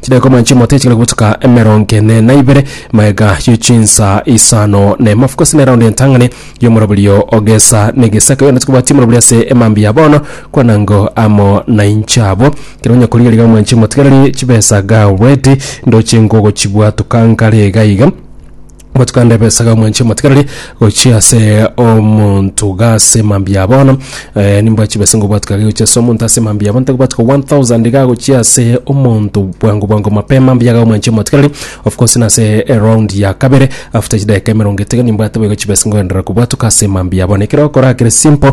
Chidaeka omoanche omote chingana gotuka emerongo ene na ibere, maega ye chinsa isano na emafu gose neraundi entang'ani y'omoroberio ogesa negesaka yona tikobwati omoroberio ase emambia ya bono kwanango amo na inche abo kero onye korigereria omoanche omotigereri chibesa ga already ndoche ngogochibwatuka ngare iga iga Motikande ebesaga omwanchie motigarari gochia ase omonto gase mambia bono eh, nimbwa chibesa ngo bwatu kage gochia ase omonto ase mambia bono tagobwatu ko 1000 ga gochia ase omonto bwango bwango mapema mbiaga omwanchie motigarari of course nase eround ya kabere after chidakika emerongo etega nimbwate boigo chibesa ngoenderera kobwatuka ase mambia bono ekero okora kere simple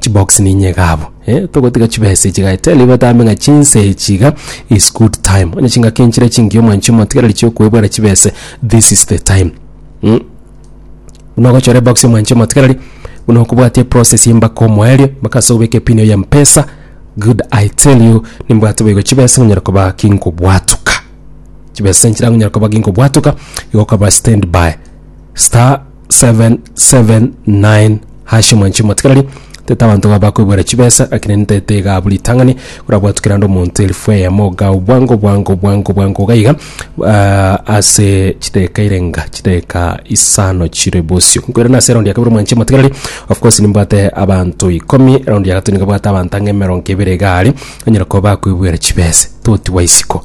Chibox ninye iga abwo. Eh, togotiga chibesa echi iga. Tell batambe ng'a chinsa echi iga is good time. Onye chingaki nchire chingiya omwanchi omotigereri chiokoebwera chibesa, this is the time. Mm. Buna ogochora ebox omwanchi omotigereri, buna okobwati eprocess y'embaka omoerio, mpaka ase obeke pin ya Mpesa, good I tell you, nimbwate boigo chibesa ngonyara koba kinkobwatuka. Chibesa nchire angonyara koba kinkobwatuka, igo okaba standby. Star 779 hash mwanchi motigarari tete abanto ga bakoibwera chibesa lakini nitete iga buri tang'ani korabwatu kerande omonto elfu eyemo iga obwango bwango bwango bwango iga iga ah, ase chideka irenga chideka isano chire bosio nkoirana ase eraundi ya kabere mwanchi motigarari of course nimbwate abanto ikomi eraundi ya gatatu niga bwate abanto ang'e emerongo ebere iga are anyara koba bakoibwera chibesa totiwa isiko